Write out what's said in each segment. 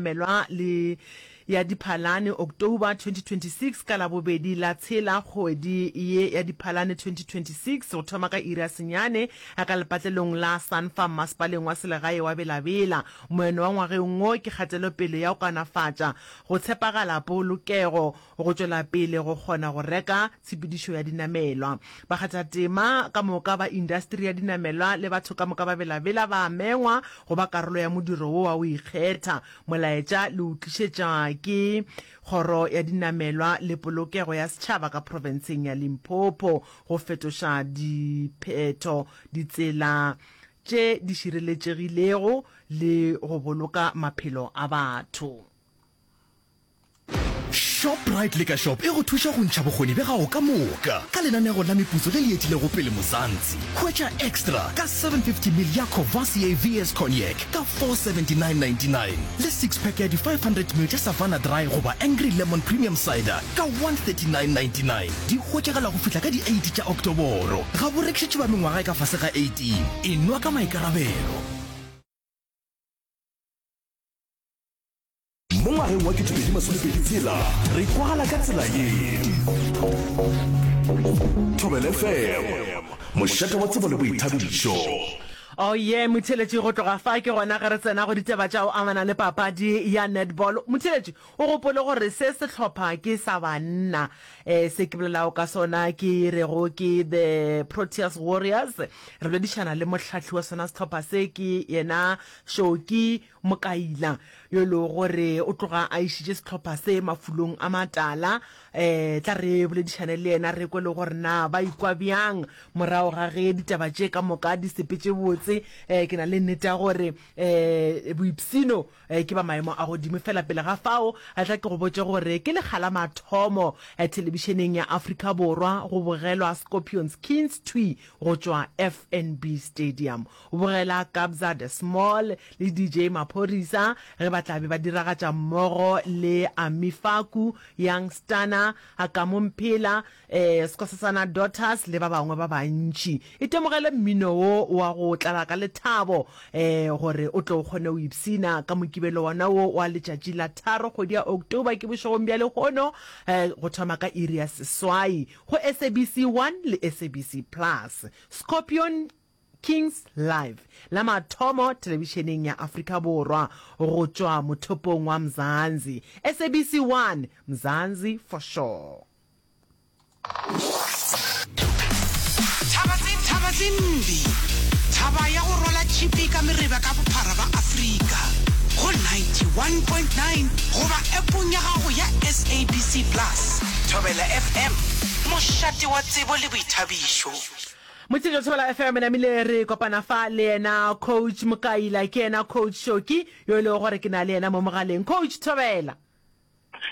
Melwa le ya Diphalane, October 2026, ka Labobedi la tshela kgwedi ye ya Diphalane 2026, go thoma ka iri ya senyane ka lepatlelong la Sanfa mmasepaleng wa selegae wa Bela-Bela. Moeno wa ngwageng wo ke kgatelopele ya go kanafatša, go tshepagala, polokego, go tšwela pele go kgona go reka tshepedišo ya dinamelwa. Bakgathatema ka moka ba indasteri ya dinamelwa le batho ka moka ba belabela ba amengwa go ba karolo ya modiro wo wa go ikgetha. Molaetša le o tlišetša ke Kgoro ya Dinamelwa le Polokego ya Setšhaba ka Profenseng ya Limpopo go fetoša diphetho, ditsela tše di šireletšegilego le go boloka maphelo a batho. Shoprite le ka shop e go thuša go ntšha bokgoni bja gago ka moka ka lenanego la meputso le le etilego pele Mozantsi. Hwetša extra ka 750 ml ya Courvoisier VS Cognac ka 479.99 le six pack ya di 500 ml tša Savanna Dry goba Angry Lemon Premium Cider ka 139.99. Di hwetšagala go fihla ka di 8 tša Oktoboro. Ga bo rekišetšwe ba mengwaga e ka fase ga 18. E nwa ka maikarabelo. Mo ngwageng wa 2026 re kwagala ka tsela ye. Thobele FM, mošate wa tsebo le boithabišo. Oye Motheletši go tloga fa ke gona ge re tsena go ditaba tša go amana le papadi ya netball. Motheletši o gopole gore se sehlopha ke sa banna um se ke bolelago ka sona ke rego ke the Proteas Warriors. Re boledišana le mohlahli wa sona sehlopha se ke yena Shoki Mokaila, yo e lego gore o tloga a išitše sehlopha se mafolong a matala, um tla re boledišane le yena re kwe le gore na ba ikwa bjang morago ga ge ditaba tše ka moka di sepetše botse. Um ke na le nnete ya gore um boipshino um ke ba maemo a godimo. Fela pele ga fao tla ke go botše gore ke lekga la mathomo thelebišeneng ya Afrika Borwa go bogelwa Scorpions Kings thwi go tšwa FNB Stadium. O bogela Kabza De Small le DJ Maphorisa ge ba tla be ba diragatša mmogo le Ami Faku, Young Stunna, Akamu Mphela, Skosasana Daughters le ba bangwe ba bantši. Itemogele mmino wo wa go tlala ka lethabo gore o tle o kgone go ipshina ka Mokibelo wona wo wa letšatši la tharo kgwedi ya October ke bošegong bja lehono go thoma ka iri ya seswai go SABC 1 le SABC Plus. Scorpion Kings Live, la mathomo telebišeneng ya Afrika Borwa go tšwa mothopong wa Mzansi, SABC 1, Mzansi for Sure. Thaba tse Thaba tse mbi Thaba ya go rwala tšhipi ka mereba ka bophara ba Afrika go 91.9 goba appong ya gago ya SABC Plus. Thobela FM, mošate wa tsebo le boithabišo. Motšeletšo Thobela FM e namile re kopana fa le yena Coach Mokaila, ke yena Coach Shoki yo e lego gore ke na le yena mo mogaleng. Coach Thobela.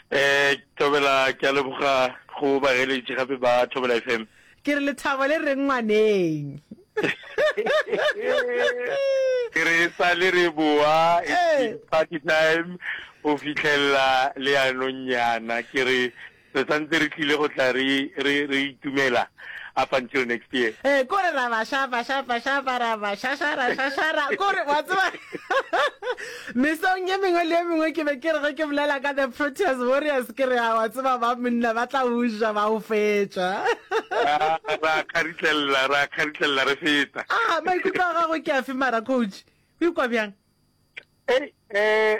Eh, Thobela, ke a leboga go bageletši gape ba Thobela FM. Ke re lethabo le reng ngwaneng? Ke re e sa le re boa, it's been party time go fitlhelela leanong nyana. Ke re Re sa ntse re tlile go tla re, re, re itumela up until next year. Ee, kore ra ba shapa, shapa, shapa, ra ba šašara, šašara, kore, wa tseba, mesong ye mengwe le ye mengwe ke be ke re ge ke bolela ka the Proteas Warriors ke re, a wa tseba ba monna ba tla o ja ba o fetša. Ah, ra kgaritlelela, ra kgaritlelela re feta. Ah, maikutlo a gago ke afe mara, coach? O ikwa bjang? Ei, eh,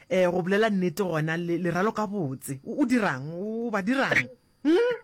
Ee, go bolela nnete gona, le, leralo ka botse. O, o dirang? O ba dirang? Hm?